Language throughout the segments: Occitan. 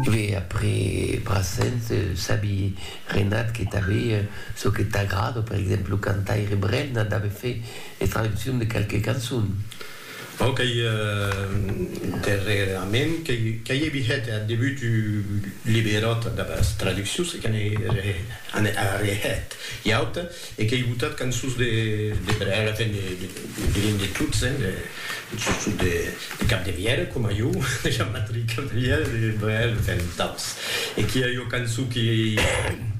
Ve après Brassens, sabi Renat que tanbe çò que t'agrada, per exemple lo cantaire Brel n'a dave fait es traduccions de quelques cançons. Bon, qu'ei darrèrament qu'ei evihet ath debut un liberòt damb es traduccions e que n'ei arrehet ua auta. E qu'ei botat cançons de brèga, enfin de diríem de tots, hein, de sustot de Capdevièlh, coma jo, de Jean-Patric Capdevièlh, de Brel, enfin de taus. E qu'i a ua cançon que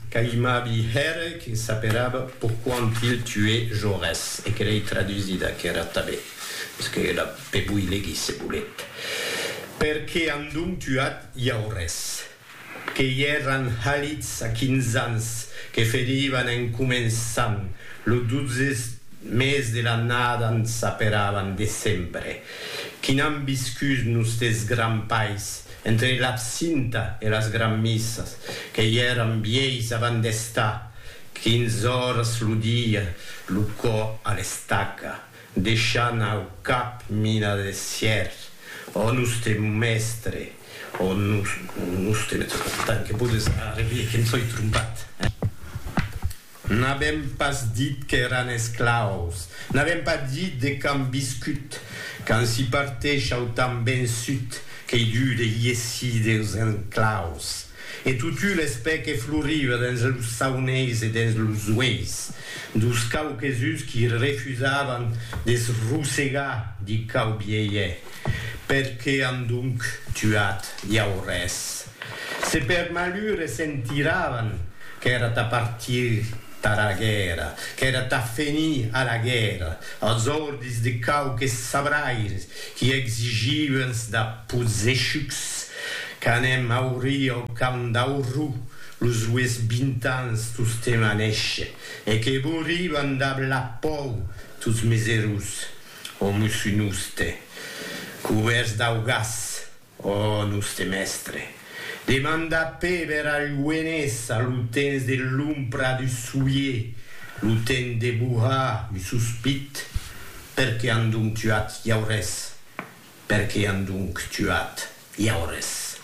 qu'aimabi hèr, que s'aperava Pourquoi ont-il tué Jaurès? e que l'ei tradusida, qu'èra tanben, mès que la pe voi legir se volet, Perqué an donc tuat Jaurès? Que i èran halits a quinze ans que ferivan en començant lo dotze mes de l'annada n s'aperavan decembre. Qu'i n'an viscut nostes grands pais, entre l'absinta e las granmissas, que i èran vièis avant d'estar quinze oras lo dia lo cò a l'estaca, Deishant au cap mina de sièr, Ò nustre mèstre, ò nustre. Tant que podes arrevier que em soi trompat, eh? N'avèm pas dit qu'èran esclaus, n'avèm pas dit de qu'an viscut, qu'an si parteishau tan ben sut qu'ei dut de iessir deus enclaus. E totu l'espè que floriva dens los sauneis e dens los ueis dos quauques-uns qui refusavan de se rosegar di quau bielhe, per qué an donc tuat iau res? Se per malhur e se'n tiravan, qu'èra tà partir tara guèrra, qu'èra tà fenir a la guèrra, als ordis de quauques sabraires Qui exigí uens da posechucs qu'anem auri au camp d'auru los ues vint ans tostem a néisher e que bouri van dab la pòu tots mes erós, o mussunuste, cubèrts dau gas, Ò noste mèstre! demanda Péber al Gouenés a lo temps de l'ombra du soulier, lo temps de bohar un sospit, per qué an donc tuat Jaurès? Per qué an donc tuat Jaurès?